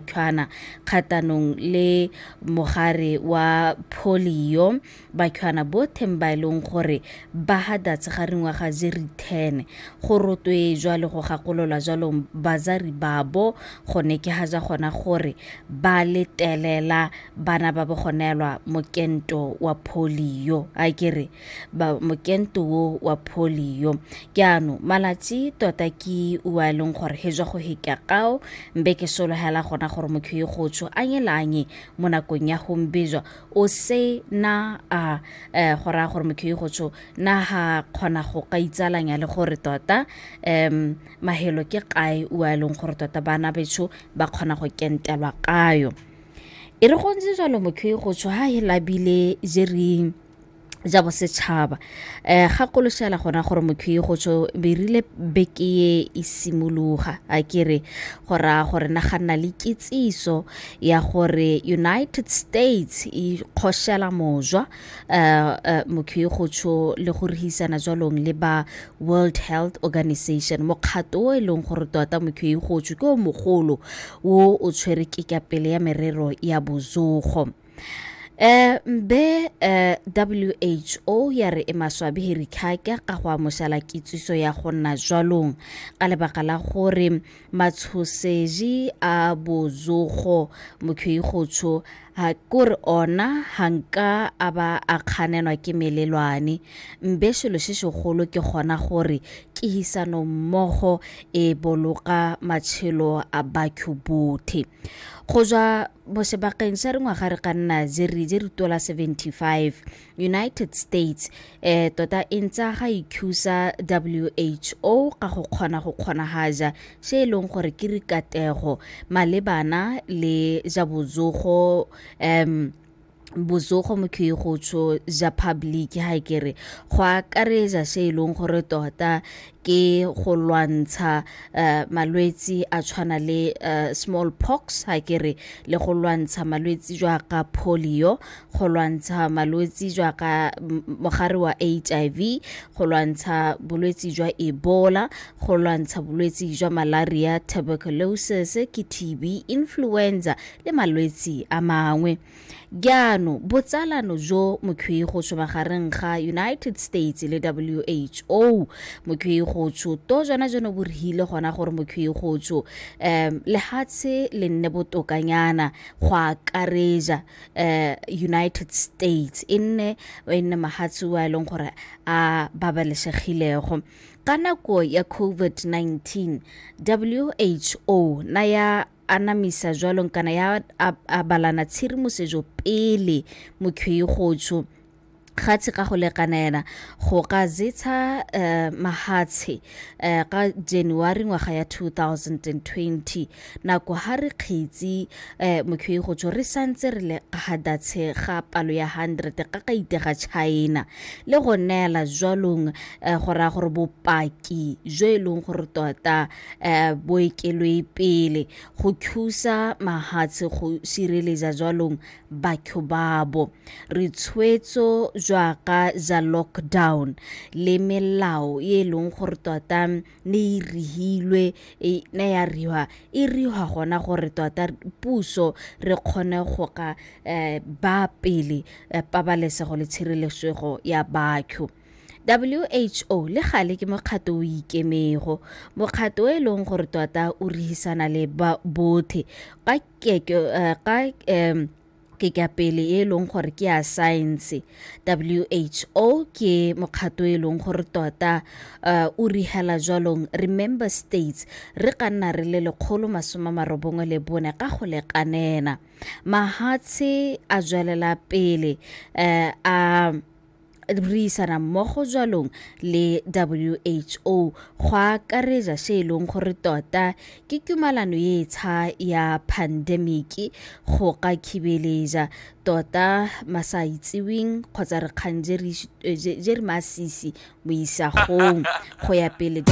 tshwana kgatanong le mogare wa polio bakhwana botheng ba e leng gore ba hadatse ga ringwaga je re 10 go rotwe jwale go gakololwa jwalong bazari babo gone ke ga ja gona gore ba letelela bana ba bogonelwa mokento wa polio a kere ba mokento wo wa polio ke ano malatsi tota ke ua e leng gore he jwa go heka kao mbe ke solohela gona gore motho e gotsho a nyelanye mo nakong ya gombejwa o se na a eh, go raya gore motho e gotsho na ga kgona go ka itsalanya le gore tota um mahelo ke kae ua e leng gore tota bana betsho ba kgona go kentelwa kayo e re gontse jalo motho e gotsho ha e labile jereng ja bosetšhaba um ga koloshela gona gore mokhi go tsho berile beke e e simologa a kere go raya gore na ga nna le kitsiso ya gore united states e kgoshela mojwa um uh, uh, mokhi go tsho le go rehisana jwalong le ba world health organization mokgato o e leng gore tota mokhi go tsho ke o mogolo o o tshwere ke kapele ya merero ya bozogo eh be eh, WHO ya re e maswabi hiri khaka ka go amošala kitsiso ya go nna jwalong ka lebaka la gore matshoseji a bozogo mokhwi gotsho ha kore ona hanka a ba a kganenwa ke melelwane mbe selo se segolo ke gona gore kihisano mmogo e boloka matshelo a batho bothe go jwa mo sebakeng sa re ngwaga re ka nna je re je re tola 75 united states eh tota e ntsa ga ikhusa who ka go kgona go kgonagaja se e leng gore ke rikatego malebana le ja bozogo um bozogo mo ke go tsho ja public ha ke re go akaretsa se e leng gore tota ke go lwantsha uh, malwetsi a tshwana le uh, eh, small pox ha ke re le go lwantsha malwetsi jwa ka polio go lwantsha malwetsi jwa ka mogare wa hiv go lwantsha bolwetsi jwa ebola go lwantsha bolwetsi jwa malaria tuberculosis ke tb influenza le malwetsi a mangwe jaano botsalano jo mokhweigotsho magareng ga united states le who mokhweigotsho to jona jono bo rehile gona gore mokhweigotsho um lehatshe le nne botokanyana go akareja um united states e nne e nne mahatshe wa e leng gore a babalesegilego ka nako ya covid-19 who na ya anamisa jwalong kana ya abalana tshirimosetso pele mokhwei gotsho gatshe ka go lekana ena go ka zetsha uh, eh, mahatshe uh, eh, ka january ngwaga ya 2020 nako ha re kgetsi uh, eh, mokhwei go tsho re santse re le gadatshe ga palo ya 100 ka ka itega china le go neela jwalong uh, go raya gore bopaki jo e leng gore tota eh, boekelwe pele go thusa mahatshe go sireletsa jwalong batho babo re tshwetso jwaka za lockdown le melao e leng gore tota ne e rihilwe e ne ya riwa e riwa gona gore tota puso re kgone go ka eh, ba pele eh, pabalesego le tshireletso ya batho who le gale ke mokgato o ikemego mokgato e leng gore tota o rehisana le bothe ka keke eh, ka um ke ka pele e leng gore ke ya science who ke mokgato e leng gore tota uh, o rihela jwalong re member states re ka nna re le lekgolo masome marobongwe le bone ka go lekanena mahatshe a jwelela pele uh, a uh, re isana mmogo jwalong le who go akaretsa se e leng gore tota ke tumalano e tsha ya pandemiki go ka khibeletsa tota masa itseweng kgotsa re kgang je re masisi mo isagong go ya pele